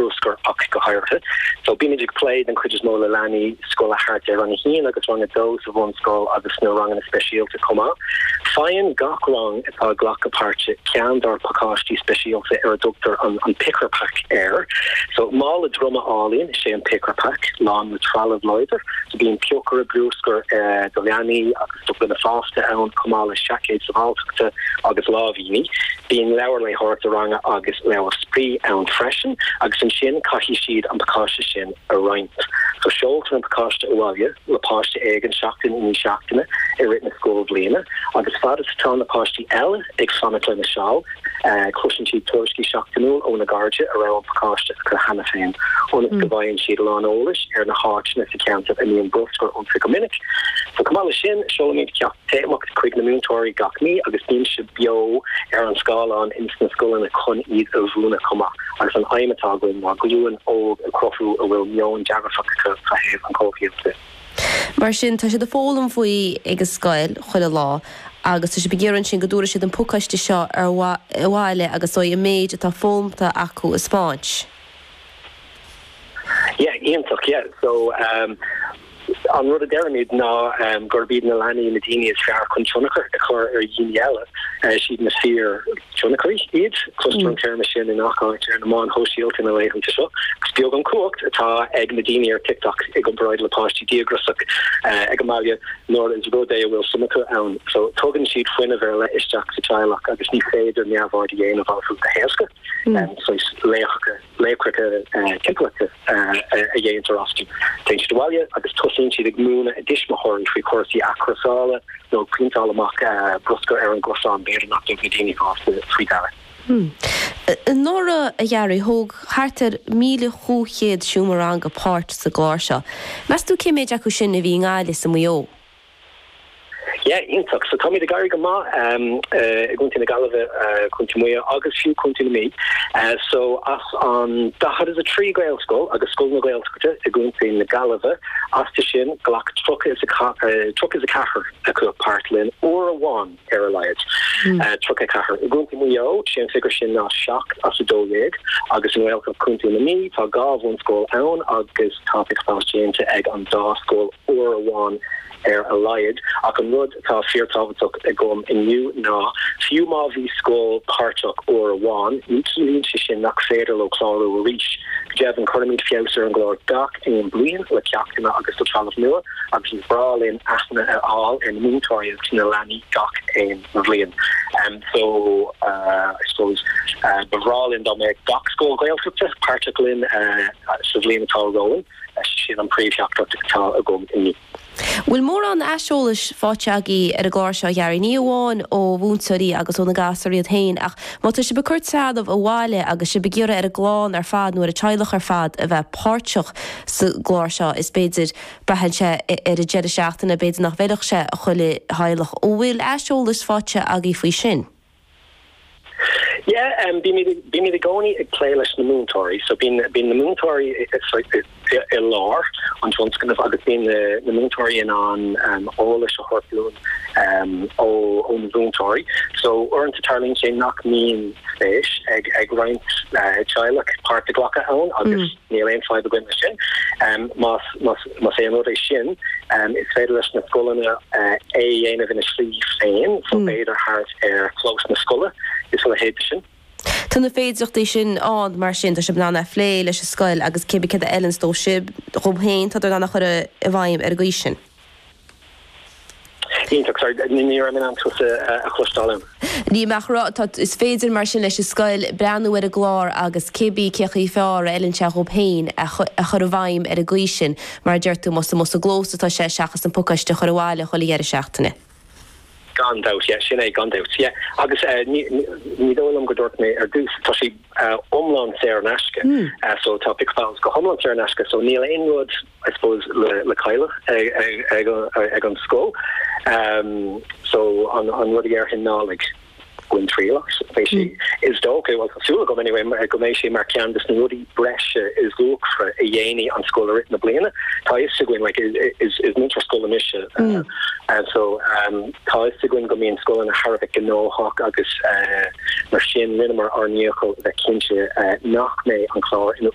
bhruscair ach go háirithe. So bímid ag plé den chuid is mó le leanaí scoile thart ar rang a haon agus rang a dó sa bhunscoil agus sna ranganna speisialta chomh maith. Faigheann gach rang atá ag glacadh páirte ceann dár bpacáistí speisialta ar a dtugtar an Picker Pack air. So mála droma álainn is ea an Picker Pack, lán le trealamh láidir. So bíonn piocaire bruascair do leanaí agus do dhaoine fásta ann chomh maith le seaicéid sábháilteachta agus lámh. Bíonn leabhar léitheoireachta ranga agus leabhar spraoi ann freisin agus ansin caithfidh siad an pacáiste sin a roinnt. So seoltar an pacáiste abhaile le páiste éigin seachtain i ndiaidh seachtaine i rith na scoilbhliana agus fad is atá na páistí eile ag fanacht lena seal cloiseann siad tuairiscí seachtainiúla óna gcairde a raibh an pacáiste acu cheana féin ionas go bhfaigheann siad a lán eolais ar na háiteanna sa cheantar a mbíonn bruscar iontu go minic. So chomh maith leis sin, seolaimid ceacht. téamach chuig na múinteoirí gach mí agus bímse beo ar an scáileán ins na scoileanna chun iad a mhúineadh chomh maith agus an aidhm atá againn ná glúin óg a chruthú a bhfuil meon dearfach acu fa thaobh an chomhshaoil de. Mar sin, tá siad ag foghlaim faoi ag an scoil chuile lá agus tá siad ag iarraidh ansin go dtabharfaidh siad an pacáiste seo ar abhaile agus go mbeidh an méid atá foghlamta acu a spáint. Yeah, iontach, yeah, so, um, An rud a deirimid ná gurb iad na leanaí na daoine is fearr chun tionchar a chur ar dhaoine eile. Is iad na fíorthionchairí iad. Cloistear an téarma sin i ngach áit ar na meáin shóisialta na laethanta seo. Agus is beag an cumhacht atá ag na daoine ar TikTok i gcomparáid le páistí díograsach ag an mbaile nuair is rud é a bhfuil suim acu ann. So tugann siad fuinneamh ar leith isteach sa teaghlach agus ní féidir neamhaird a dhéanamh orthu go héasca. Saghas laochra. Laochra timpeallachta a dhéantar astu. Téann siad abhaile agus tosaíonn siad ag múineadh a dtuismitheoirí faoi chúrsaí athchúrsála nó ag pointeáil amach bruscar ar an gcosán, b'fhéidir nach dtug na daoine fásta faoi deara. Anuraidh, a Ghearóid, thóg thart ar 1,500 seomra ranga páirt sa gclár seo. Meas tú cé méid acu sin a bhí i nGaillimh is i Maigh Eo? Yeah, iontach. So táimid ag éirí go maith i gContae na Gaillimhe, Contae Mhaigh Eo agus fiú Contae na Mí. So as an 43 Gaelscoil agus scoileanna Gaeltachta i gContae na Gaillimhe astu sin, ghlac 34 acu páirt linn uair amháin ar a laghad. 34. I gContae Mhaigh Eo, sé an figiúr sin ná 7 as 12, agus i nGaeltacht Chontae na Mí tá dhá bhunscoil ann agus tá Picker Pals déanta ag an dá scoil uair amháin ar a laghad. Ach an rud atá fíorthábhachtach agam inniu ná, fiú má bhí scoil páirteach uair amháin, ní chiallaíonn sé sin nach féidir leo clárú arís. Go deimhin, cuirimid feabhas ar an gclár gach aon bliain le ceachtanna agus le trealamh nua. agus ba bhreá linn aithne a fháil ar na múinteoirí agus na leanaí gach aon bhliain. So I suppose ba bhreá linn dá mbeadh gach scoil Ghaeltachta páirteach linn sa bhliain atá romhainn, sin an príomhtheachtaireacht atá agam inniu. Bhfuil mórán aiseolais faighte agaibh ar an gclár seo a Ghearóid? Ní amháin ó mhúinteoirí agus ó na gasúir iad féin ach má tá sibh ag cur trealamh abhaile agus sibh ag iarraidh ar an gclann ar fad nó ar an teaghlach ar fad a bheith páirteach sa gclár seo. Is féidir, braitheann sé ar an deireadh seachtaine, b'fhéidir nach bhfeilfeadh sé chuile theaghlach. An bhfuil aiseolas faighte agaibh faoi sin? Yeah, bímid i gcónaí ag plé leis na múinteoirí, so bíonn na múinteoirí i lár an tionscnaimh agus bíonn na múinteoirí in ann eolas a thabhairt dúinn ó na múinteoirí. So uaireanta tarlaíonn sé nach mbíonn spéis ag roinnt teaghlach páirt a ghlacadh ann agus, Níl aon fadhb againn leis sin. Más é an rud é sin, is féidir leis na scoileanna é a dhéanamh ina slí féin, so b'fhéidir thart ar chlós na scoile is a leithéid de sin. Tá na féidireachtaí sin ann mar sin, tá sibh in ann é a phlé leis an scoil agus cibé céard a fheileanns dóibh, dhóibh féin, tádar in ann é a chur i bhfeidhm ar an gcaoi sin. Iontach, sorry, ní raibh mé in ann tusa a chloisteáil ann. Níl mé ach a rá, tá, is féidir mar sin leis an scoil breathnú ar an gclár agus cibé cén chaoi is fearr a fheileann sé dhóibh féin é a chur i bhfeidhm ar an gcaoi sin, mar a deir tú, más amuigh sa gclós atá sé seachas an pacáiste a chur abhaile chuile dheireadh seachtaine. Gan dabht, yeah. Sin é, gan dabht, yeah. Agus ní dóigh liom go dúirt mé ar dtús, tá sé iomlán saor in aisce, so tá Pic Pals go hiomlán saor in aisce, so níl aon rud, I suppose, le cailleadh ag an scoil, so an rud a déarfainn ná, like, Bain triail as agus is dócha, bhuel tá súil agam anyway, go mbeidh sé mar cheann des na rudaí breise is luachmhaire a dhéanfaidh an scoil i rith na bliana. Tá a fhios againn, like is múinteoir scoile mise so tá a fhios againn go mbíonn scoileanna thar a bheith gnóthach agus mar sin rinneamar ár ndícheall bheith cinnte nach mbeidh an clár ina